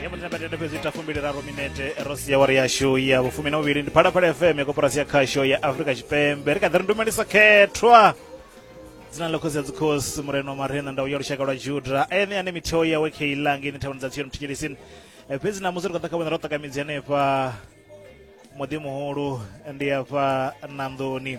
yamutinabatenda fhedzi ita fumbiliraru minete ro sia wari yashu ya vhufumi na vhuvhili ndi phalaphala fm ya koporasi ya khasho ya afrika tshipembe ri kha ḓi ri ndumelisa khethwa dzina ḽa khosi ya dzikhosi murena wa marena ndau ya lushaka lwa juda ene ane mitheo yawe khe ilangi ine thavhani dza tsiyo muthikilisini fhedzi namusi ri kha ḓa kha vhona ro ṱakamidzi hanefha muḓi muhulu ndi afha nanḓoni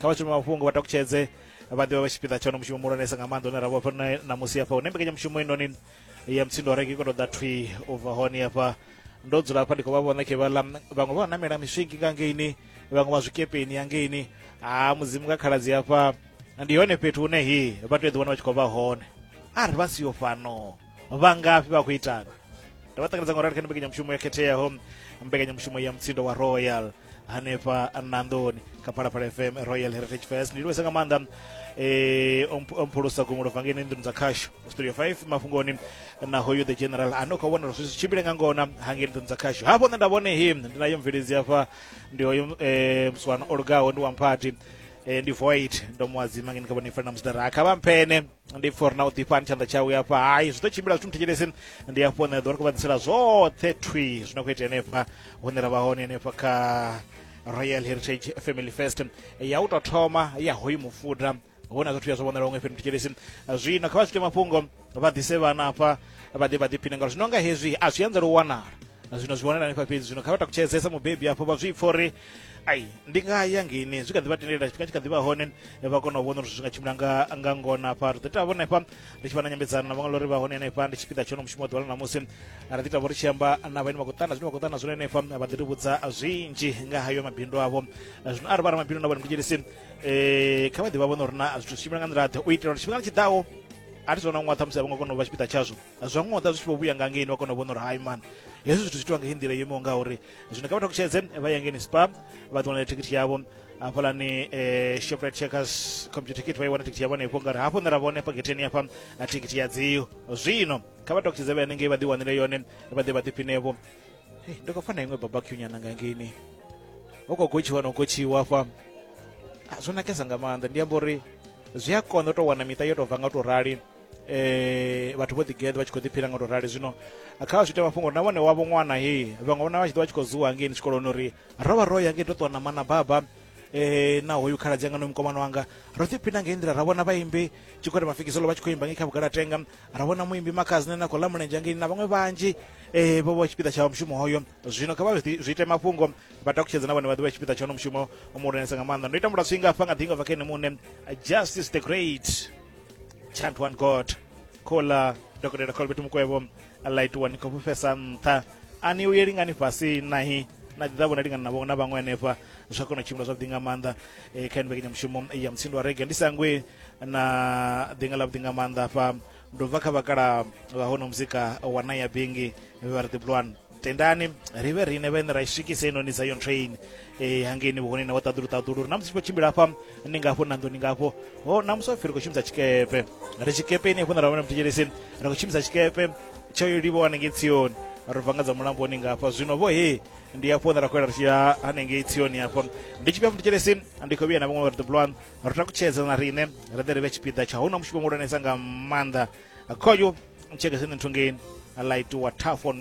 kha vha shumi mafhungo vha takutshedze vha ḓivha vha tshipiḓa tsha mushumo muhulwanesa nga maanḓa une ra vhofha na musi hafha hune mbekanyamushumo inoni ya mutsindo reke ikoto ḓa thwi u bva hone hafha ndo dzula hafha ndi khou vha vhona khe vhaḽa vhaṅwe vha namela miswingi nga ngeini vhaṅwe vha zwikepeni ya ngeini ha mudzimu nga khaladzi hafha ndi hone fhethu hune hi vha tea ḓiwana vha tshi khou vha hone a ri vha siyo fhano vha ngafhi vha khou itana ndo vha ṱanganedza nga u rali kha ndi mbekanyamushumo yo khetheaho mbekanyamushumo ya mutsindo wa royal hanefha nandoni kha phalaphala fm royal heritage fest ndi lwesa nga maanḓa eh omphulusa gumulo vangeni nḓuni dza khasho studio 5 mafhungoni na hoyu the general ano kho vhona zwi tshimbile nga ngona hangeni nḓuni dza khasho hafho nṋe nda vhone him ndi nayo mveledzi hafha ndi hoyo eh mswana olugaho ndi wa mphathi eh ndi void ndo muwadzima ngeni kha vhone fanela musidara kha vha mphene ndi for na u ḓifha ni tshanḓa tshawe hafha hai zwi ḓo tshimbila zwithu muthetshelesi ndi hafho ne ḓo ri kuvhadzisela zwoṱhe thwi zwi no khou itea henefha hune ra vha hone henefha kha royal heritage family fest ya u tou thoma ya hoyu mufuda hona zwithu ya zwo vhonala huṅwe fhethu thetshelesi zwino kha vha swike mafhungo vha ḓise vhana hafha vha ḓe vha ḓiphine ngauri zwino nga hezwi a zwi anzela u wanala zwino zwi wanala hanefha fhedzi zwino kha vha takutshedzesa mubebi afho vha zwi pfa uri ai ndi nga ya ngeini zwi kha ḓi vha tendelela tshifhinga tshi kha ḓi vha hone vha kona u vhona uri zwi nga tshimbila nga nga ngona hafha ri ḓo ita vhone hafha ri tshi vha na nyambedzano na vhaṅwe lori vha hone henefha ndi tshipiḓa tshono mushumo wa ḓuvha ḽa ṋamusi ri ḓi ita vho ri tshi amba na vhaine vha khou ṱana zwine vha khou ṱana zwone henefha vha ḓi ri vhudza zwinzhi nga hayo mabindu avho zwino arali vha ra mabindu na vhone kudzhelisi um eh, kha vha ḓi vha vhona uri na zwithu zwi tshimbila nga nḓila ḓe u itela uri tshifhingani tshi ḓaho a thi zona ṅwaha ṱhamusi a vho nga kona u vha tshipiḓa tshazwo zwa ṅwaha ḓa zwi tshi vho vhuya nga ngeini vha kona u vhona uri hai man hezwi zwithu zwi itiwa nga hei nḓila yo imaho nga uri zwino kha vha takutshedze vha ye ngeni spa vha ḓiwanela thikhithi yavho hafhalani eh, shoprite checkers computer ticket vha i wana thikhithi yavho hanefho ngari hafho nṋe ra vhone hafha getheni hafha na thikhithi ya dziyo zwino kha vha takutshedze vha hanengei vha ḓi wanele yone vha ḓe vha ḓiphinevho hey, ndi khou fana iṅwe babacue nyana nga ngeini ho khou gotshiwa no gotshiwa hafha Ah, zwo nakesa nga maanḓa ndi amba uri zwi a konḓa u tou wana miṱa yo tou bva nga u tou rali eh vhathu vho ḓigeḓa vha tshi khou ḓiphila nga u tou rali zwino kha vha zwi ita mafhungo uri na vhone wavho ṅwana he vhaṅwe vhona vha tshi ḓo vha tshi khou zuwa ngei ni tshikoloni uri ro vha ro ya ngei to ṱuwa na mana baba eh na hoyu khala dzanga no mukomana wanga ro ḓi phina ngei nḓila ra vhona vhaimbi tshikwata mafikisolo vha tshi khou imba ngei kha vhugalatenga ra vhona muimbi makhazine na khou ḽa mulenzhe ngei na vhaṅwe vhanzhi eh vho vha tshipiḓa tsha mushumo hoyo zwino kha vha zwi ite mafhungo vha takutshedze na vhone vha ḓivha tshipiḓa tsha hono mushumo muhulwanesa nga maanḓa ndo ita mulatswinga hafha nga ḓinga bva kha ene muṋe justice the great chant one god khola dokotela colbert mukwevho ḽa itiwa ni khou fhufhesa nṱha a ni uyeli ngani fhasi nahi na ḓi ḓavho na lingana navho na vhaṅwe hanefha zwa kona u tshimbila zwavhuḓi nga maanḓa e, kha mbekanyamushumo ya mutsindo wa rege ndi sangwe na ḓinga ḽavhuḓi nga maanḓa fha ndo bva kha vhakala vha hono muzika wa naya bingi vhe vha ri ḓi bulwana tendani ri vhe riṋe vhene ra i swikise inoni zion train e hangeni vhuhoneni wa ṱaḓulu ṱaḓulu ri na musi tshi khou tshimbila hafha ni ngafho na nḓuni ngafho ho na musi wapfi ri khou shumisa tshikepe ri tshikepe ini hafho na ravhona muthetshelesin ri khou shumisa tshikepe tsho yo livho hanengei tsioni ri bva nga dza mulamboni ngafha zwino vho he ndi hafho hune ra khou ela ri tshi ya hanengei tsioni hafho ndi tshifhia muthetshelesin ndi khou vhuya na vhaṅwe vha ri ḓobulwan ri takutshedza na riṋe ri ḓe ri vhe tshipiḓa tsha hu na mushumo muhulwanesa nga maanḓa khoyu tshekeseni nthungeni a light wa tafon